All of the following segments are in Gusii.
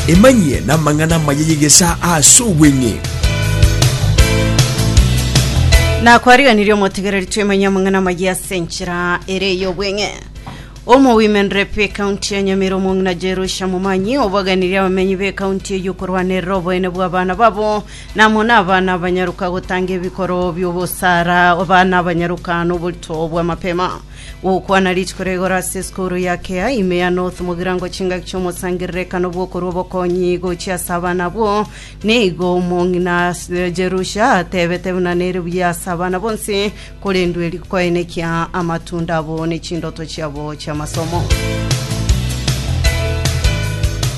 emanyie namang'ana amaya y'egesaa ase obweng'e nakwariganirie omotegereri twemanya amang'ana amaya ase enchera ere ey'obweng'e omo women rep ekaunti ya nyamira omong'ina jerusha momanyi obaganirie abamenyi b'ekaunti eye okorwanerera oboene bw'abana babo Namwe nabana abanyaroka gotanga ebikoro bi'obosara, abana abanyaroka noborito bw'amapema. Gokwana rituko ria igoro ase esukuru ya kea ime ya North mogirango chingaki chi'omosangererekano bw'okorwa obokonyi gochia ase abana abwo. Nigo omong'ina Jerusha atebete buna nere buya ase abana bonsi Korende eri koene kia amatunda abo ne chindoto chiabo chi'amasomo.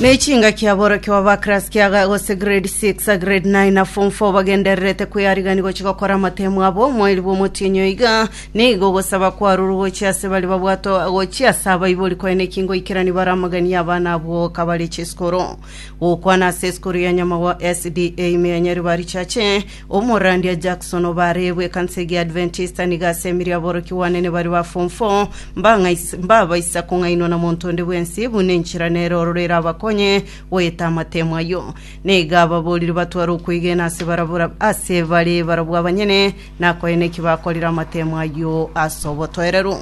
Ne chinga kia borokio aba class kia gose grade 6 a grade 9 na form 4 bagendererete kweyarigani gochi gokora amatemo abo moiri bwa omotinyo iga nigo gosaba kwaruru gochi ase bari babwato gochi ase abaibori koene ki ngoikerani bare amagani abana abwo kabare chesukuru gokwana ase esukuru ya nyamagwa SDA ime ya Nyaribari chache Omorandia Jackson obareebwe ekansa egia Adventista nigo aseemirie aborokia bwanene baria ba form four mbang'ais- mbabaisa kong'ainwa na monto onde bwensi buna enchera nere ororo erabakonye goeta amatemo ayio. Na iga ababoorire batware okwegena ase barabwo ra- ase bare barabwo abanyene, na koyena eki bakorire amatemo ayio ase obotoereru.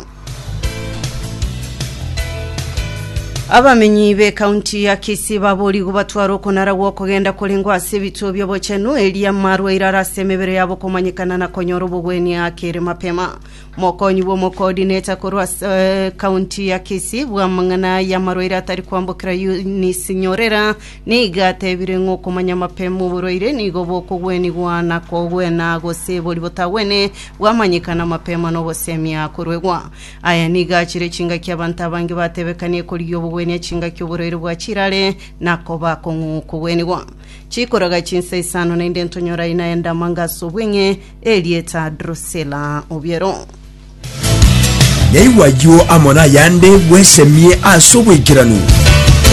Abamenyi b'ekaunti ya Kisii baboorigwe batware okonara gw'okogenda korengwa ase ebituo bi'obochenu eria marwaire are ase emebere yabo komanyekana na konyora obogwenia ake ere mapema. Mokonyi bw'omokoodineta korwa ase ekaunti ya Kisii bw'amang'ana y'amarwaire atari kwambokera Eunice Nyorera Nigo atebire ng'a okomanya amapema oborwaire nigo bokogwenigwa na kogwena gose boria botagwene bwamanyekana amapema na ogosemia koruegwa. Aya nigo achire chingaki abanto abange batebekania ekorigia obogwenia chingaki oborwaire bwa chirare na koba akong'u kogwenigwa. Chikoraga chinsa isano na inde ntonyore aina aende amanga ase obweng'e, erieta Drusilla Obiero. Yaigwa ayio amo nayande bwesemie ase obwaikeranu.